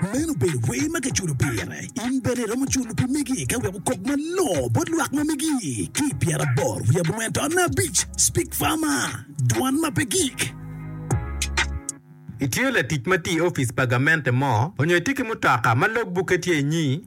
Meno obedo wer ma kiculo pire. In bene iromo culo pi megi ka wek okok malongo bot lwak ma megi. Ki i pyeraboro wiye abongwen to abic, Speak Farmer, Dwan ma pe gik. Itye latic ma tye i opic pa gamente mo onyo itye ki mutoka ma logbukke tye inyi?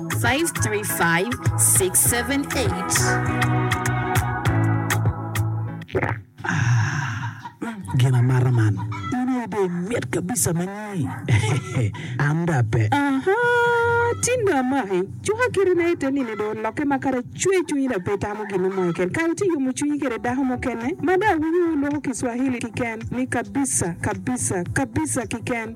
Gin amata man in aye dong mit kabisa manyi an dong ape. Tin dong amaki cuka kite na ite nini dong oloke ma kara cwer cwinyi dong pe itamo ginu mo keken kara iti yomo cwinyi kede dako mukene ma dong awinyo wulwoko kiswahili kiken ni kabisa kabisa kabisa kiken.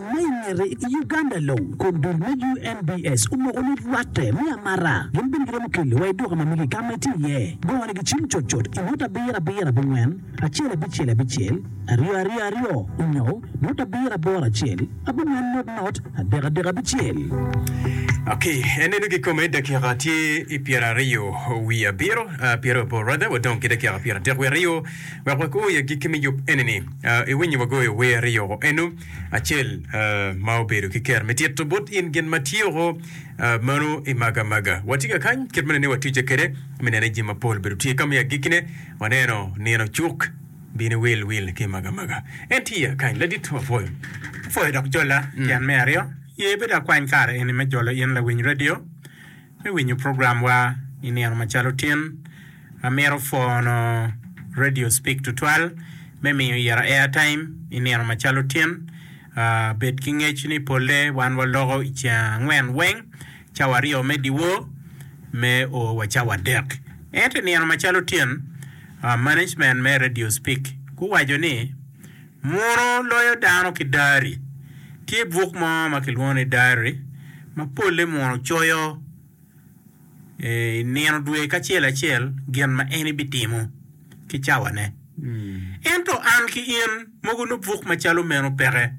Ma i ngete, i Uganda long, kom dul me UNBS omoko ni rwatte me amata gin bene giromo keli wa i duka ma mege ka ma itye iye. Gongo ni gicim cut cut i ngut abiro abiro abongwen acel abicel abicel aryo aryo aryo onyo ngut abiro aboro acel abongwen not not adek adek abicel. Ok, enenu kikome dakika tye i pyeraryo wiye abiro, ah, pyerabor rather, wadong ki dakika pyeradek wiye aryo wek wako i agikki me yub enini. Ah, iwinyo wagoyo wer i yoko eno? Acel ma obedo ki kero me tito bot in gin ma tyeko meno i maga maga. Watye ka kany kit mene ni watwicce kede me nene jin mapol bedo tye kami agikkine waneno nino cuk bini wil wil ki maga maga. En tye akany ladit mapwoyo. Pwoyo dok jola tyen me aryo. Ye bed akwany kare eni me jolo in lawiny radio me winyo program wa i nino macalo tin, amito pwono radio speak tutwal me miyo ira air time i nino macalo tin, bed ki ngec ni pole wan wa loko i ceng angwen weng, cawa aryo me diwo me o wa cawa adek, ento i nino macalo tin management me radio speak guwaco ni. Muno loyo dano ki diary. Tye buk mo ma kilwongo ni diary ma polle muno coyo i nino dwe ki acel acel gin ma en ibitimo ki cawane. Ento an ki in mogo nongo buk macalo meno peke.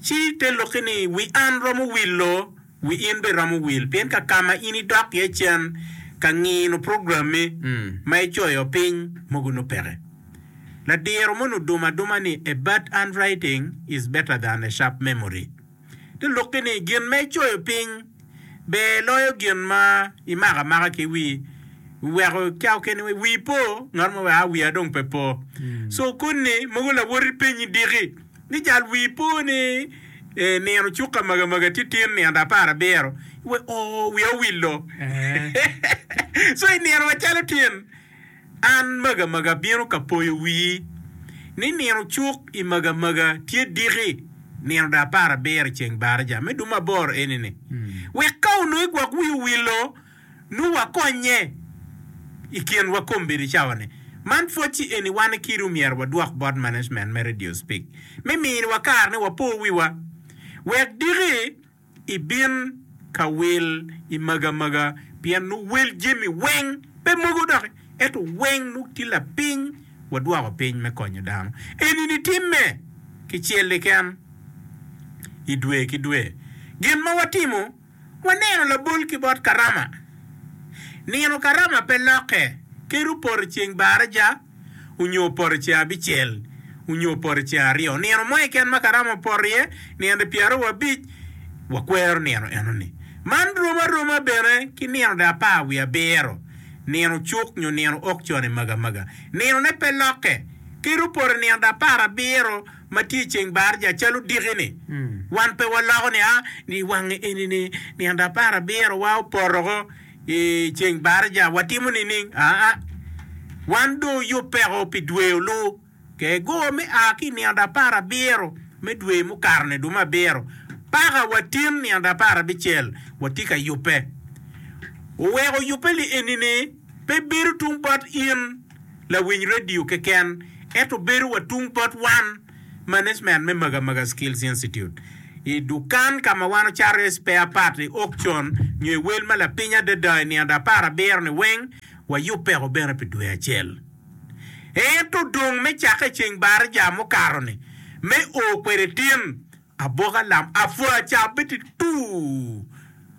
Ci te lokke ni wi an romo wilo. Wi in bene romo wil pien ka ka ma in idok iye cen ka ngino programmi ma icoyo piny mogo nongo peke. Ladiro moni odumo aduma ni a bad handwriting is better than a sharp memory. Te lukki ni gin ma icoyo piny ber loyo gin ma imako amaka ki wi weko ca okene wa wi po ngat mo weko a wiya dong pe po. So koni mogo lawoti penyi diki. Ni jal wii po ni nino cuka maga maga tye tin nino apar abiro we oo wiya owillo so i nino macalo tin an maga maga abino ka poyo wii ni nino cuk i maga maga tye diki nino da apar abiro i ceng baraja me duma aboro eni ni wek ka onongo igwok wii owillo Nongo wakonnye i kinwa kombeddi cawa-ni. Man pwod ci eni wan i kidu myero wadwok bot management me Radio Speak me miniwa kare ni wapo wiwa wek diki i bin ka wil i maga maga pien nongo wel jemi weng pe mogo doki eto weng nongo tye lapiny wadwoko piny me konyo dano. Eni ni timme ki cel kiken i dwe ki dwe. Gin ma watimo. Waneno labol ki bot Karama. Nino Karama pe lokke, kadi poto ceng baraja onyo poto ceng abicel onyo poto ceng aryo. Nino mo keken ma Karama opoto iye, nino pyeraryo wabic, wakwero nino enoni. Man rom aroma bene ki nino de apar wiye abiro, nino cuk nyo nino okcone magamaga. Ninone pe lokke, kadi opoto nino de apar abiro. ma tye i ceng barja calo diki-ni, wan pe waloko nia ni i wange eni-ni nino apar abiro-wa opoto woko i ceng barja, watimo nining? Aa, wan dong oyubbeko pi dwe olu. Kego me a ki i nino apar abiro me dwe mukato-ni dong me abiro paka watin nino apar abicel watye ka yubbe. Oweko yubbe li eni-ni pe bedo tung bot in. lawiny radio keken ento bedo wa tung bot wan, management me Maga Maga Skills Institute, i dukan ka ma wan ocato iye spare part i auction nyo i wel ma lapiny adada i nino apar abiro-ni weng, wayubbeko bene pi dwe acel. Ento dong me cakke i ceng Barija mukato-ni, me o kwede tin, Aboka lam apwa ca beti tuu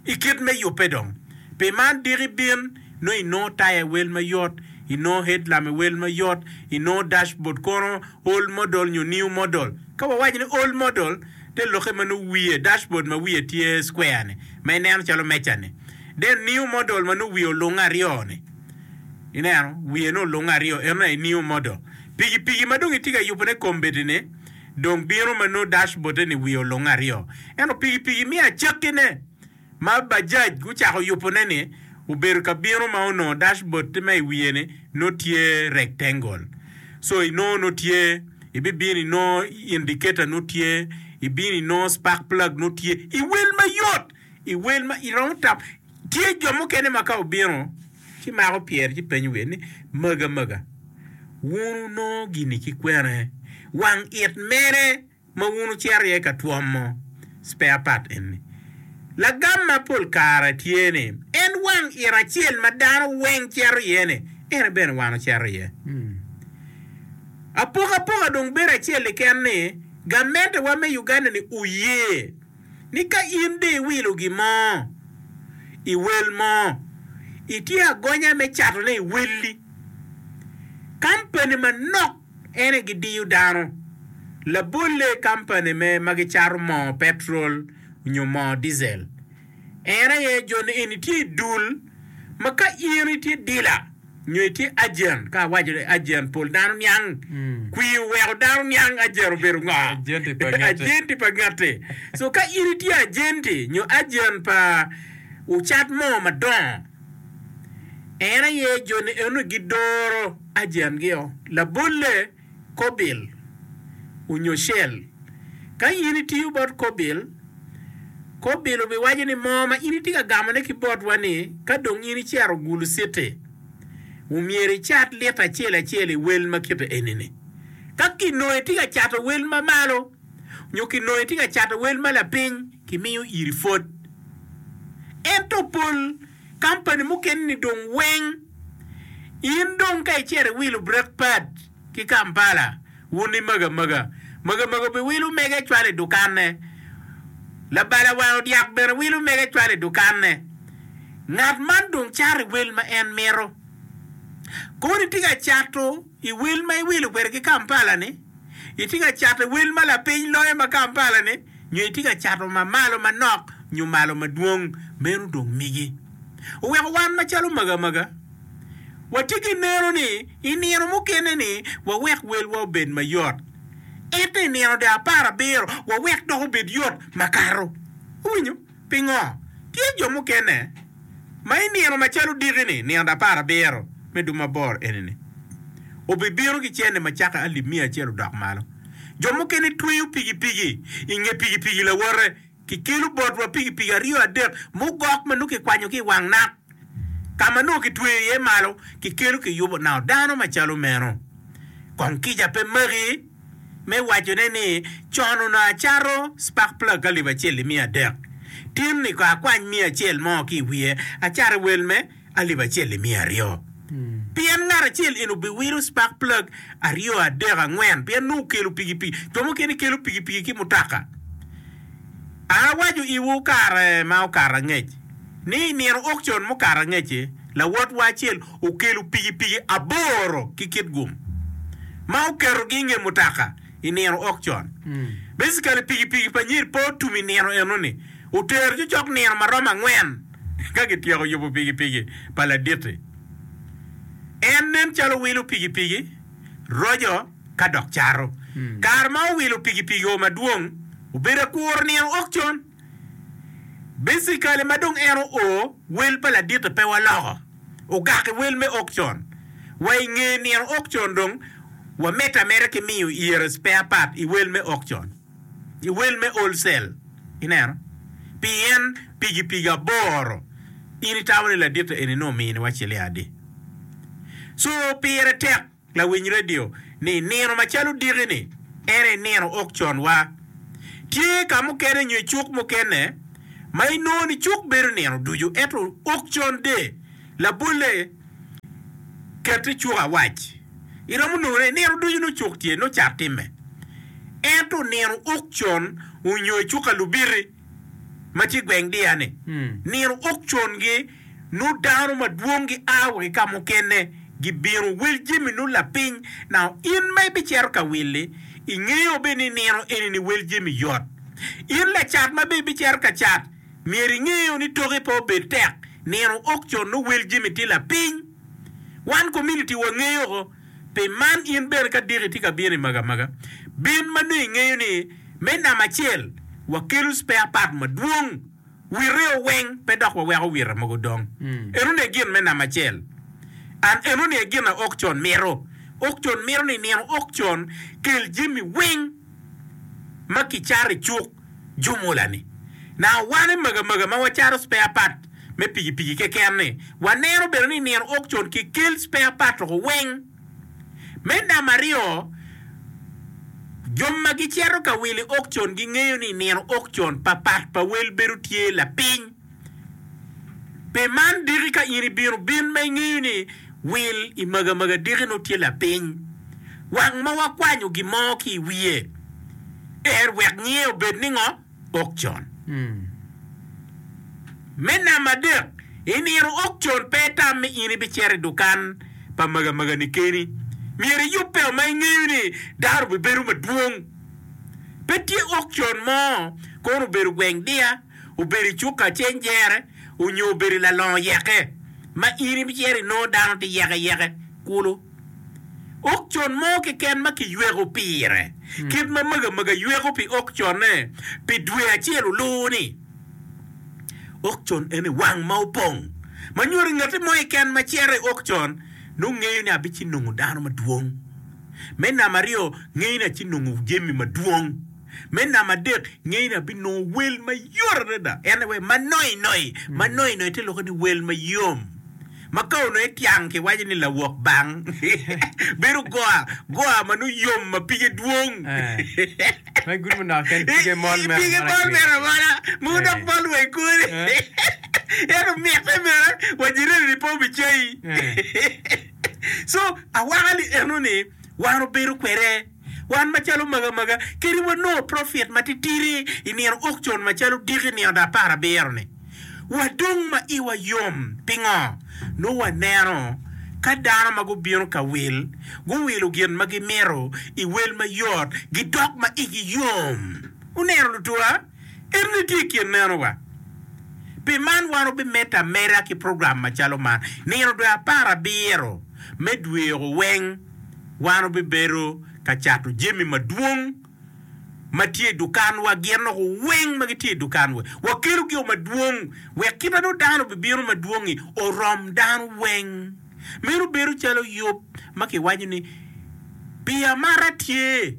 i kit me yubbe dong. Pi man diki bin nongo i nongo taya i wel mayot, i nongo headlamp i wel mayot, i nongo dashboard kono old model nyo new model. Ka wawaco ni old model, te lokke ma nongo wiye, dashboard ma wiye tye square ni, ma i neno calo meja ni. Then new model ma nongo wiye olunge aryo ni, i neno, wiye nongo olunge aryo, eno aye new model. Piki piki ma dong itye ka yubone kombeddi ni, dong bino ma nongo dashboard-de ni wiye olunge aryo. Ento pigi pigi miyo acakkine ma Bajaj gucako yubone-ni obedo ka bino ma onongo dashboard ma i wiye-ni nongo tye rectangle. So inongo nongo tye ibibino inongo indicator nongo tye, ibino inongo spark plug nongo tye, iwil mayot! I wel ma iromo tam, tye jo mukene ma ka obino ci mako pyere ci penyo wiye ni, Maga maga, wun wunongo gini ki kwene? Wang it mene ma wun wucito iye ka twomo spare part eni? Lagam ma pol kare tye ni, en wang it acel ma dano weng cito iye-ni, en bene wan wucito iye. Apokapoka dong bedo acel keken ni gamentewa me Uganda-ni oye. ni ka in dong iwilo gin mo i wel mo, itye agonya me catone i welli. Kampani manok ene gidiyo dano. Labolle i kampani me ma gicato moo petrol nyo moo diesel en aye jo ni eni tye i dul ma ka in itye dila, Nyo itye ajent? Ka awaco ni ajent, pol dano niang kwir oweko dano niang ajent obedo ngo? Ajenti pa ngette. So ka in itye ajenti nyo ajent pa ocat mo madongo, en aye joni enoni gidoro ajentgi o. Labolle. kobil onyo cell. Ka in itiyo bot kobil, kobil obiwaco ni mo ma in itye ka gamo ne ki botwa ni ka dong in icero gulu citi, omyero icat lita acel acel i wel ma kite eni ni. Ka kinongo itye ka cato wel ma malo nyo kinongo itye ka cato wel ma lapiny, kimiyo iri pwod. Ento pol. kampani mukene-ni dong weng. In dong ka icito iwilo brek pad ki Kampala, wun i Magamaga, Magamaga biwilo mege cwalo i dukanne. Labala wango dyak bene wilo mege cwalo i dukanne. Ngat man dong cato i wel ma en mito. Koni tye ka cato. I wil ma iwilo kwede ki Kampala ni, itye ka cato wel ma lapiny loyo ma Kampala ni nyo itye ka cato ma malo manok nyo malo madwong? Meno dong migi. Oweko wan macalo magamaga watye ki neno ni i nino mukene ni wawek welwa obed mayot. Ento i nino de apar abiro wawek dok obed yot makato. Iwinyo? Pingo tye jo mukene ma i nino macalo odiki-ni, nino apar abiro me dub mabor eni-ni, obibino ki cente macake alip miya acel odok malo? Jo mukene tweyo pikipiki i nge pikipiki lawote, kikelo botwa pikipiki aryo adek mugok ma nongo kikwanyo ki i wang nak, ka ma nongo kitweyo iye malo kikelo kiyubo nao dano macalo meno. Kong kica pe magi? me wacone ni, Con onongo acato spakpla galip acel i miya adek, tinni kono akwany miya acel mo ki i wiye, acato i wel me alip acel i miya aryo. Pien ngat acel eni obiwilo spakpla aryo, adek, angwen, pien nongo okelo pikipiki. Jo mukene kelo pikipiki ki mutoka. An awaco iwu, kare ma okato angec. ni i nino aukcion mukato angec-ci, lawotwa acel okelo pikipiki aboro ki kitgum ma oketogi i nge mutoka i nino aukcion. Basically, pikipiki pa Nyir pe otum i nino eno-ni. Otero cocok nino ma romo angwen ka kityeko yubo pikipiki pa laditi. En nen calo wilo pikipiki, roco, ka dok cato. Kare ma owilo pikipiki-o madwong, obedo akuro nino aukcion. Basically ma dong en oo wel pa laditte pe waloko ogaki wel me auction wa i nge nino auction dong wa mete ameta ki miyo iyere spare part i wel me auction i wel me old sale ineno pi yen pigi pigi aboro in itamo ni laditte eni nongo mini wa ciling adi so pire tek. Lawiny redio ni nino macalo odiki-ni, ento i nino ok con-wa. Tye ka mukene nyo i cuk mukene ma inongo ni cuk bedo nino ducu ento ok con de. Labolle, ket i cuk awac, iromo nongo ni nino ducu nongo cuk tye, nongo cat timme. Ento nino ok con onyo i cuk ka Lubiti ma tye i gweng Diya-ni, nino ok con-gi. nut dano madwong gia wa ki ka mukene gibino. Wil Jimmy nut lapiny now in ma ibicito ka willi ingeyo bene ni nino eni ni wel Jimmy yot. In lacat ma bene ibicito ka cat myero ingeyo ni toki pe obed tek nino ok con nongo wel Jimmy tye lapiny. Wan community wa ngeyo ko pi man in bene ka diki tye ka bino i maga maga bin ma nongo ingeyo ni me namba acel wakelo spare part madwong Wireo weng pe dok waweko wira mogo dong. Enoni aye gin me namba acel. An enoni aye gin a Okcon mito. Okcon mito ni nino Okcon kel jami weng ma kicato i cuk jumula ni. Na wane maga maga ma wacato spare part me piki piki keken ni, waneno bene ni nino Okcon kikel spare part oko weng. Me namaryo, jo ma gicito ka wili okcon gingeyo ni i nino okcon, papat pa wel bedo tye lapiny. Pe man diki ka in ibino bin ma ingeyo ni wil i magamaga diki nongo tye lapiny. Wang ma wakwanyo gin mo ki i wiye, er wek nyinge obed ningo? okcon. Me namba adek, i nino okcon pe itam ni in ibicito i dukan pa magamagani keni. Myero iyubbeo ma ingeyo ni dano bibedo madwong. Pe tye okcon mo, kono obedo gweng diya, obedo i cuka cenjere, onyo obedo i lalongo yeke, ma in ibicito inongo dano tye yekeyeke kulu. Okcon mo keken ma kiyweko pire. Kit ma Maga Maga yweko pi okconne pi dwe acel oluwo-ni, Okcon ene wang ma opong, ma nyuto ni ngati mo keken ma cito i okcon nongo ngeyo ni abic ci nongo dano madwong. Me namba aryo, ngeyo ni aci nongo jami madwong. Me namba adek, ngeyo ni abinongo wel mayot adada, ene wai ma noinoino. Ma noinoino tye lokke ni wel mayom. ma ka onongo etiang kiwaco ni lawok bang, bedo goa goa ma nongo yom ma pige dwong. Pe gurumo naka ken pige mol mere Pige mol amola-ki. mere amola, mogo dok mol wa i kore. Ento mitte mere wa jireni pe obicayi. So, awaka-ni enoni wan obedo kwede. Wan macalo maga maga kadi wanongo profit matitidi i nino aukcion macalo diki nino da apar abiro-ni, wadong ma iwa yom. Pingo? Nongo waneno ka dano ma gubino ka wil guwilo gin ma gimito i wel mayot, gidok ma igi yom. Wuneno, lutuwa? Ento ni tye i kin meno wa. Pi man wan wubimed ameda ki program macalo man. Nino dwe apar abiro me dwe oko weng wan wubibedo ka cato jami madwong ma tye i dukanwa, gin oko weng ma gitye i dukanwa. Wakelo gi o madwong wek kite nongo dano bibino madwong-ngi orom dano weng. Meno bedo calo yub ma kiwaco ni, Pi amata tye.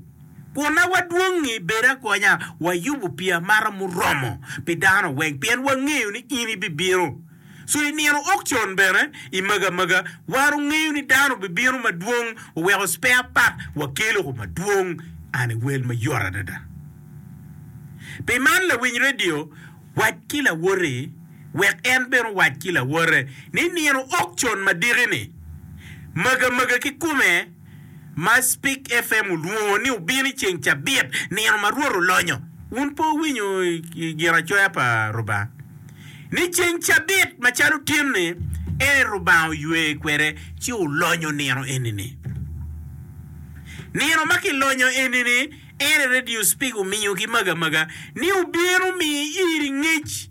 Kwonna wa dwongi, bed akonya, wayubo pi amata muromo pi dano weng, pien wangeyo ni in ibibino. So i nino okcon bene, i magamaga, wan ongeyo ni dano bibino madwong, oweko spare part wakelo ko madwong an i wel mayot adada. Pi man lawiny radio, wac ki lawoti wek en bene owac ki lawote ni nino okcon madiki ni, magamaga kikume, ma Spik FM olwongo ni obino i ceng cabit, nino ma Rwot olonyo. Wun pe wuwinyo i giracoya pa Rubanga, ni ceng cabit macalo tin-ni en aye Rubanga oywe kwede, ci olonyo nino eni-ni? Nino ma kilonyo eni-ni en aye redio Spik omiyo ki maga maga, ni obino miyo iri ngec,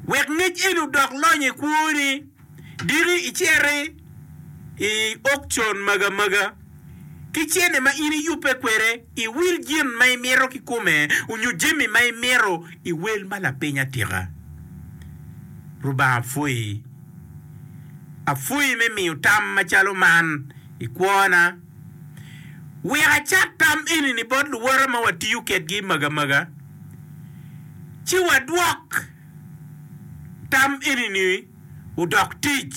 wek ngec eni odok lonyo i kwoni. Dini icere i okcon magamaga ki cene ma in iyubbe kwede, iwil gin ma imito kikome onyo jami ma imito iwel ma lapiny atika. Lubanga pwoyi. Apwoyi me miyo tam macalo man i kwona. Wek acat tam enini bot luwote ma watiyo kedgi magamaga, ci wadwok. tam eni-ni odok tic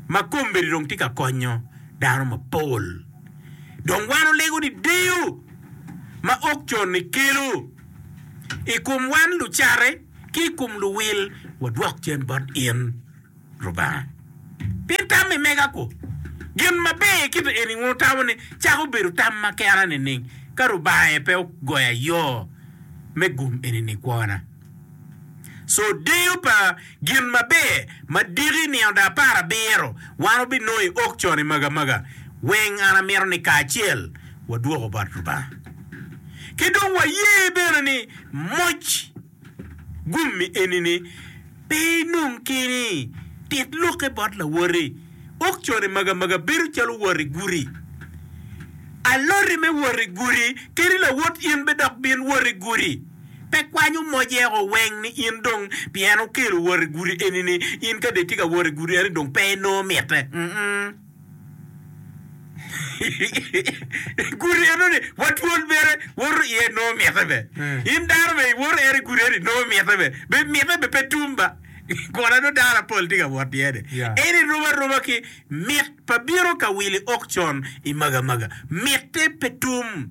ma kombeddi dong tye ka konyo dano mapol. Dong wan olego ni deyo ma okcon-ni kelo i kom wan lucatte ki i kom luwil wadwok cen bot in. Lubanga. Pien tam me mega-gu gin maber i kite eni wun wutamo ni cako bedo tam ma kera nining ka Lubanga aye pe ogoyo ayo me gum eni nikwona? Co deyo pa gin maber ma diki nino da apar abiro wan wubinongo i auction i magamaga weng an amito ni kacel wadwoko bot Lubanga ki dong waye bene ni moc. Gummi eni ni, pe inong keni, tit lokke bot lawoti. Okcone magi amaga bedo calo wot i gudi. Aloti me wot i gudi keni lawot in be dok bin wot i gudi. Pe kwanyo moc eko weng ni in dong pien okelo wot i gudi eni ni in ka dong itye ka wot i gudi eni dong pe inongo mitte. Mm-mm. I gudi enoni watwol mere woto iye nongo mitte be. In dano be iwoto ere i gudi eni nongo mitte be. Be mitte be pe tum ba. Kona dong dano apol tye ka wot iye-ni. Yeah. Eni rom aroma ki mit pa bino ka wili okcon i magamaga. Mitte pe tum.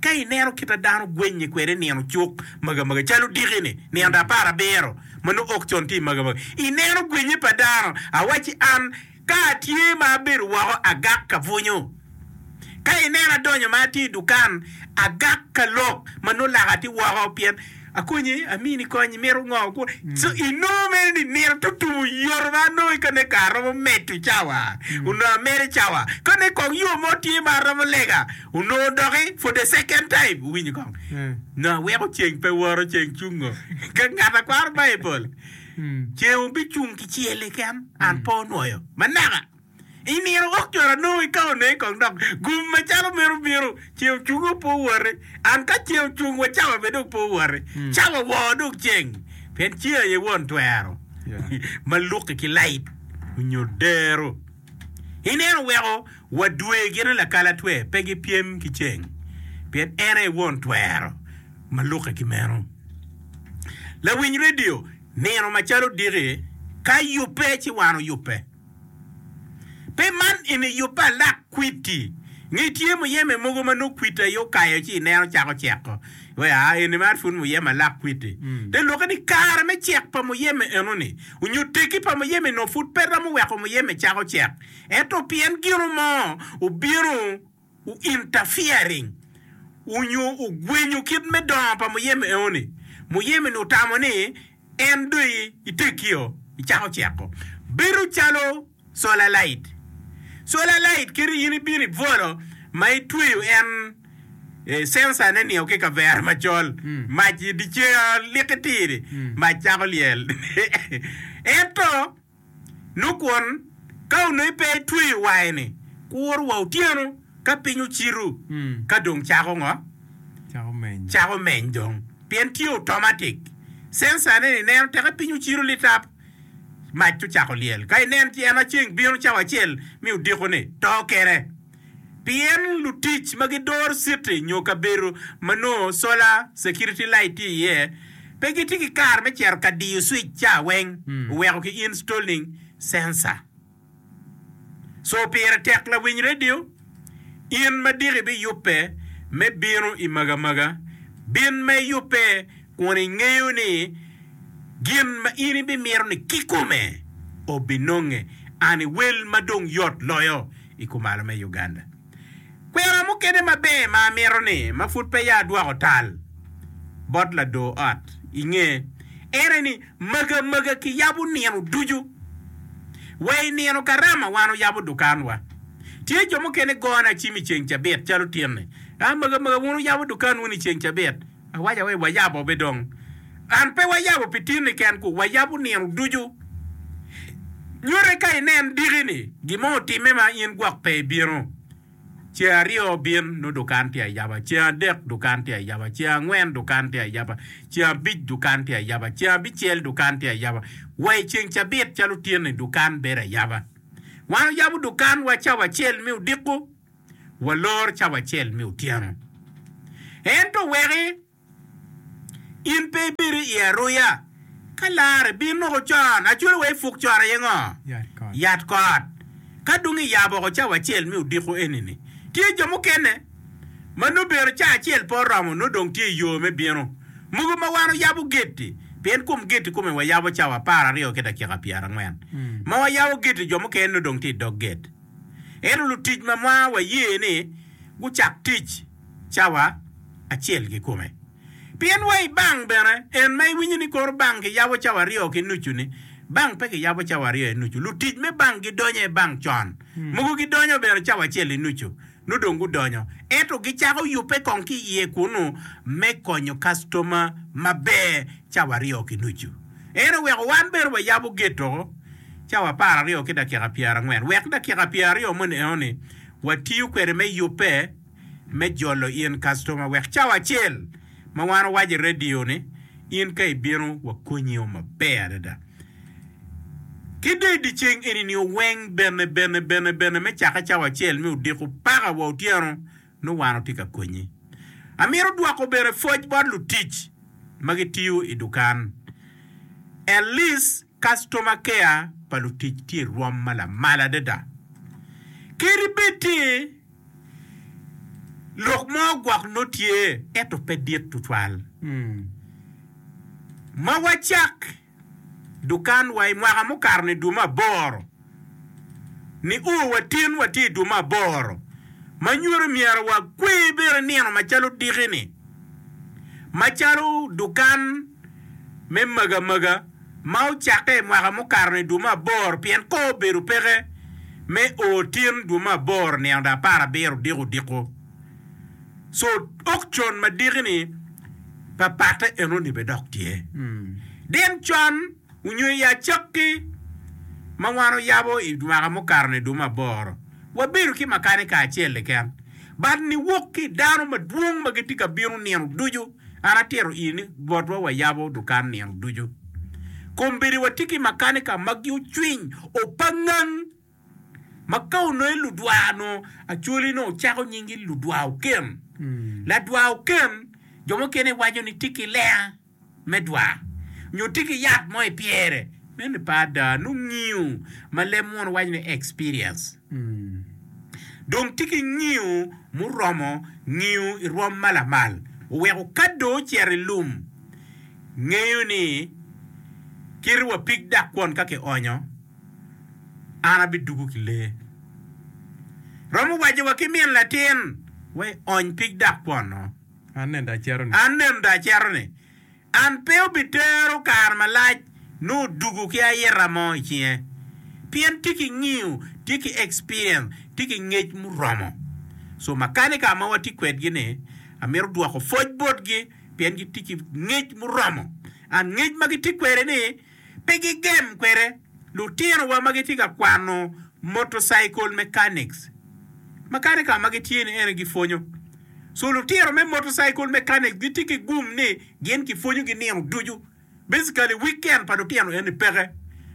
Ka ineno kit ma dano gwenye kwede nino cuk magamaga, calo odiki-ni, nino apar abiro ma nongo ok con tye magamaga, ineno gwenye pa dano. Awacci an, ka atye ma abedo woko, agak ka bwunyo. Ka inena adonyo ma atye i dukan, agak ka lok ma nongo laka tye woko, pien. Akonyi, amini kony, imito ngo? Co inongo mere ni nino tutumo yoto ma anongo i kane kare romo medo cawa onongo amedo i cawa. Kane kong yo mo tye ma aromo lega onongo doki for the second time, wuwinyo kong? Nongo aweko ceng pe woto, ceng cungo. Ka ngat a kwaro Baibul, ceng obicung kicel keken, an pe onwoyo. Manaka! I nino wok cwalo anongo i kaone kong dok gum macalo meno bino. Ce ocunge opo woti. An ka ce ocung wa cawa bene dong opo woti. Cawa woo dong ceng, pien ceng aye won twero ma luki ki lait onyo dero. I neno weko wa dwe gine lakalatwe pe gi pyem ki ceng, pien en aye won twero ma luki ki meno. Lawiny redio, nino macalo odiki ka yubbe ci wan oyubbe. Pe man eni yub pa alak kwiti. Ngi tye muyeme mogo ma nongo kwiti aye okayo ci ineno cako ceko wa, aa, eni mere pud muyeme alak kwiti. Te lwokke ni kare me cek pa muyeme eno-ni, onyo tegi pa muyeme-ni nongo pud pe romo weko muyeme cako cek. Ento pien gino mo obino. u interfering u nyo u gwenyo kit me dongo pa muyeme eo ni, muyeme ni otamo ni en do i i tekki o i cako ceko bedo calo solar light, solar light kadi in i bino i bwolo ma i tweyo en eh sensor ne ni o ki kavera macol mac i dicer liki tiri mac cako lyel ento. Nongo kwon, ka onongo i pe itweyo waini, kur wa otyeno ka piny ocitu, ka dong cako ngo? Cako meny dong, pien tye automatic. Sensor ne ni neno teke piny ocitu litap, mac to cako lyel. Ka ineno ci en aceng bino cawa acel mi odiko ni to kene. pien lutic ma gidoro citi nyo kabedo ma nongo sola, security light, tye iye pe gitye ki kare me cito ka diyo switch ca weng oweko ki installing sensor. So pire tek lawiny radio in ma diki biyubbe me bino i magamaga. Bin ma iyubbe kun ingeyo ni gin ma in ibimito ni kikome obinonge. An i wel ma dong yot loyo. i kumalo me Uganda. Kwena mukene maber ma amito ni ma pud peya adwoko tal bot lador ot i nge ene ni maga maga kiyabo nino ducu. Wa i nino karama wan oyabo dukanwa. Tye jo mukene gone acim i ceng cabit calo tinni. A maga maga wun wuyabo dukanwu ni ceng cabit? Awaca wai wayabo be dong. An pe wayabo pi tin ni ken ku wayabo nino ducu. Nyute ka inen diki ni gin mo otime ma in gwok pe ibino. Ceng aryo bin nongo dukan tye ayaba, ceng adek dukan tye ayaba, ceng angwen dukan tye ayaba, ceng abic dukan tye ayaba, ceng abicel dukan tye ayaba, wa i ceng cabit calo tyen ni dukan bedo ayaba. Wan oyabo dukan wa cawa acel me odiko. walor cawa acel me otyeno. Ento weki in pe ibed i iye aruya, ka larre bin noko con, acwalo wa i puk con aye ngo? Yat kot. Ka dong iyabo oko cawa acel me odiko eni-ni, tye jo mukene ma nongo bino ca acel pe oromo nongo dong tye i yo me bino. Mogo ma wan oyabo geti, pien kom geti kome wayabo cawa apar aryo ki dakika pyerangwen, ma wayabo geti jo mukene nongo dong tye i dog get. Ento lutic ma mwaka waye ni gucak tic cawa acel kikome. Pien wa i bang bene en ma iwinyo ni koro bang ki yabo cawa aryo ki nucu ni, bang pe ki yabo cawa aryo i nucu, lutic me bang gidonyo i bang con, mogo gidonyo bene cawa acel i nucu. nongo dong gudonyo, ento gicako yubbe kong ki i iye kunnu me konyo kactoma maber cawa aryo ki nucu. En oweko wan bene wayabo gate doko cawa apar aryo ki dakika pyera angwen wek dakika pyera aryo moni enoni watiyo kwede me yubbe me jolo in kactoma wek cawa acel ma wan owaco i radio ni in ka ibino wakonyi o maber adada. Ki dong i dye ceng eni nio weng bene bene bene bene me cake cawa acel me odiko paka wa otyeno nongo wan watye ka konyi. Amito dwoko bene pwoc bot lutic ma gitiyo i dukan. At least customer care pa lutic tye i rwom ma lamal adada. Kadi bed ni lok mo gwok nongo tye ento pe dit tutwal ma wacak. dukan wa i mwaka mukato ni dwe me aboro ni o wa tin wa tye i dwe me aboro ma nyuto myero wa kwe bene nino ma calo diki ni ma calo dukan me maga maga ma ocakke i mwaka mukato ni dwe me aboro pien kor obedo peke me o tin dwe me aboro nino da apar abiro diko diko. So okcon madiki-ni pa patte enoni bene dok tye. Din con onyo i acakki ma wan oyabo i mwaka mukato ni duma aboro, wabedo ki makanika acel keken, but niwok ki i dano madwong ma gitye ka bino nino ducu. An atito ii ni botwa wayabo dukan nino ducu. Kombeddi watye ki makanika ma ocwiny, opangang. Ma ka onongo ludwar onongo Acholi onongo ocako nyingi ludwar oken. Ladwar oken jo mukene giwaco ni tye ki lenga me dwar nyo tye ki yat mo i pyere. Meno pe ada, nongo ngiyo ma leb muno waco ni experience. Dong tye ki ngiyo muromo ngiyo i rwom ma lamal oweko ka dong ocito i lum ngeyo ni kite wapig dak kwon ka kionyo. an abidugo ki lee. Romo waco wa ki min latin wa i ony pig dak kwono. An neno da acero ni. An neno da acero ni. An pe obitero kare malac nongo odugo ki ayita mo i cinge. Pien tye ki ngiyo, tye ki experience, tye ki ngec muromo. So makanika ma watye kwedgi ni amito dwoko pwoc botgi pien gitye ki ngec muromo and ngec ma gitye kwede ni Pe gigem kwede. Lutinowa ma gitye ka kwano motorcycle mechanics, makanika ma gitye ni ene gipwonyo. So lutino me motorcycle mechanics gitye ki gum ni gin kipwonyogi nino ducu. Basically, weekend pa lutino eni peke.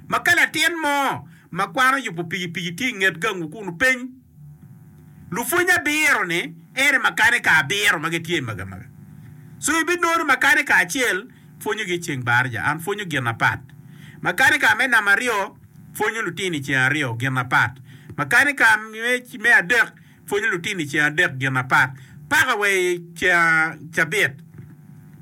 Ma ka latin mo ma kwano yubo pikipiki tye i nget gangu kunu piny, Lupwony abiro-ni ene makanika abiro ma gitye i magamaga. So ibinongo ni makanika acel pwonyogi i ceng barja and pwonyo gin apat. Makanika me namba aryo pwonyo lutino i ceng aryo gin apat. Makanika me adek pwonyo lutino i ceng adek gin apat paka wa i ceng cabit.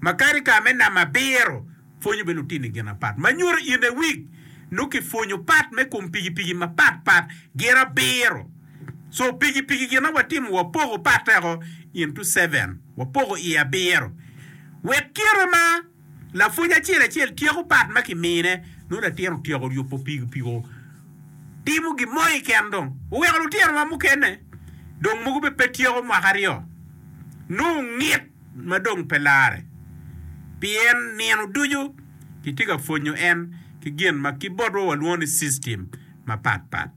Makanika me namba abiro. Pwonyo bene lutinni gin apat ma nyuto in awik. Nongo kipwonyo pat me kom pikipiki mapat pat gin abiro. Co pikipiki gin ma watimo wapoko patteko into seven, wapoko iye abiro. Wek kite ma lapwony acel acel tyeko pat ma kimine, nongo latin otyeko yubo pikipiki timo gin mo keken dong oweko lutinowa mukene dong mogo bene pe tyeko mwaka aryo. Nongo ngit. ma dong pe larre, pien nino ducu kitye ka pwonyo en ki gin ma ki botwa walwongo ni system mapat pat.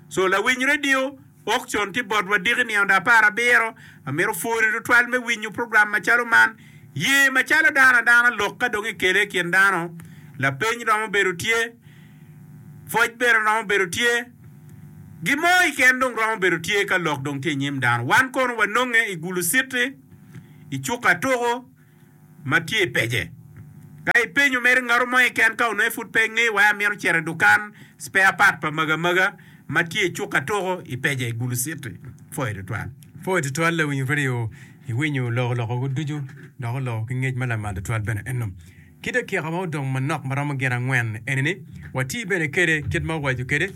So lawiny radio ok con ki botwa diki nino da apar abiro. Amito pwori tutwal me winyo program macalo man. Ye macalo dano adana lok ka dong ikele i kin dano, lapeny romo bedo tye. Pwoc bene romo bedo tye. Gin mo i ken dong romo bedo tye ka lok dong tye i nyim dano. Wan kono wanonge i gulu citi, i cuka tuku ma tye i pece. Ka ipenyo mere ngato mo i ken ka ononge pud pe ngeyo wai amito cito i dukan spare part pa maga maga ma tye i cuka tuku i pece i gulu citi. Pwoyo tutwal. Pwoyo tutwal lawinyo kadi o. Iwinyo oloko lokogo ducu dok oloko ki ngec ma lamal tutwal bene. Enno Kit atika ma odong manok ma romo gin angwen eni ni wati bene kede kit ma owaco kede,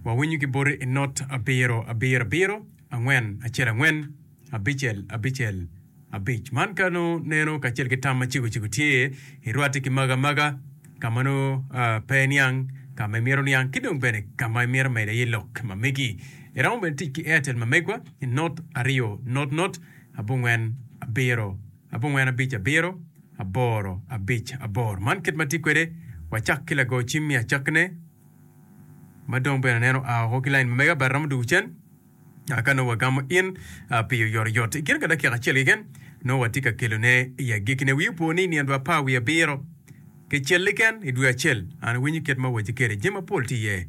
wawinyo ki boti i not abiro abiro abiro angwen acel angwen abicel abicel abic. Man ka nongo neno kacel ki tam ma cego cego tye i rwati ki maga maga ka ma nongo pe iniang, ka ma imito niang ki dong bene ka ma imito mede iye lok ma megi. Iromo bene tic ki Airtel ma megwa i not aryo not not abongwen abiro. abongwen abic abiro aboro abic abor. Man kit ma atye kwede, wacak ki lago cim me acakkine ma dong bene nen oa woko ki lain ma mege. Batara muduku cen ka nongo wagamo in pi oyotoyot. I kine ka dakika acel keken, nongo watye ka kelone i agekkine. Wi opo ni i nino dwe apar wiye abiro kicel keken i dwe acel, an awinyo kit ma awaci kwede, jami mapol tye iye.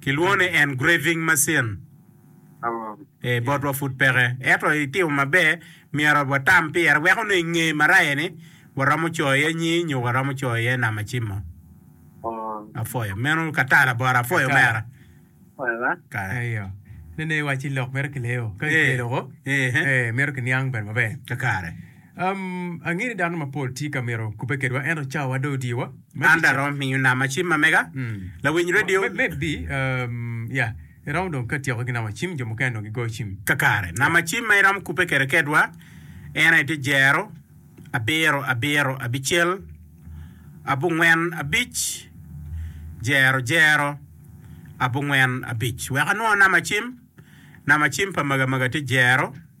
Kilwongo ni engraving machine. Ee, botwa pud peke. Ento itimo maber, myero watam pire wek onongo i nge maraya ni waromo coyo iye nying nyo waromo coyo iye nama cimo. Apwoyo. Meno ka ta labora. Apwoyo omera. Eyo. Nene iwacci lok mito kileyo. Ka kicelo woko, mito kiniang bene maber. Kakare. Um, angeyo ni dano mapol tye ka mito kubbe kedwa, ento cawawa dong odye wa. Ma An dong kica. aromo miyo nama cim ma mega, Mm. lawiny Ma- redio. ma- Maybe, um, ya, iromo dong ka tyeko ki nama cim, jo mukene dong gigoyo cim. Kakare, nama cim ma iromo kubbe kede kedwa en aye tye jero, abiro, abiro, abicel, abungwen, abic, jero, jero, abungwen, abic. Wek anwo nama cim, nama cim pa maga maga tye jero.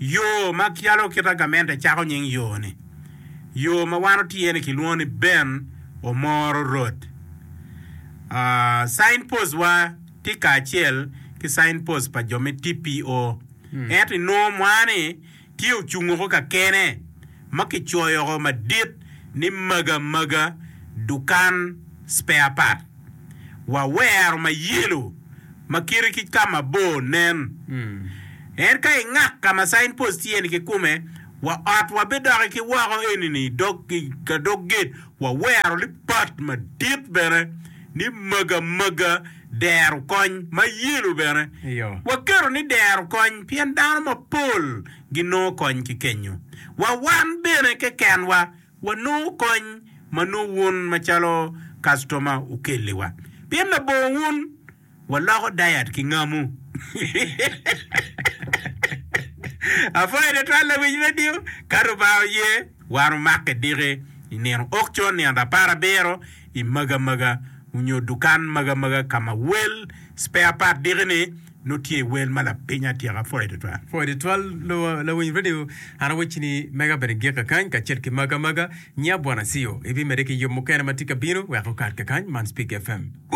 Yo ma calo kit agamente cako nying yo-ni, yo ma wan otye-ni kilwongo ni Ben Omoro Road. Signpost-wa tye kacel ki signpost pa jo me TPO, ento inongo mwa-ni tye ocungo ko kakene. ma kicoyo woko madit ni Maga Maga Dukan Spare Part, wawero ma yelo ma kite ki ka mabor nen. En ka i ngak ka ma Sign Post tye ni kikume, wa ot wa bidoki ki woko enini i dog ka dog gate wawero ni part madit bene ni Maga Maga Dero Kony ma yelo bene waketo ni Dero Kony pien dano mapol ginongo kony ki kenyo. Wa wan bene kekenwa wanongo kony ma nongo wun macalo kastoma wukelliwa. Pien labongo wun, waloko dayat ki ngamu. Apwoyo twatwal lawic redio. Ka Lubanga oye, wan wumak ki diki i nino okcon, nino rapar abiro, i Maga Maga, onyo dukan Maga Maga ka ma wel spare part diki ni. Nongo tye wel ma lapiny atyeka pwoyo tutwal. Pwoyo tutwal lawiny radio. An awecci ni mega bene gik kakany kacel ki maga maga. Nya Bwana Siyo, ibimede ki yub mukene ma tye ka bino wek okat kakany man Speak FM.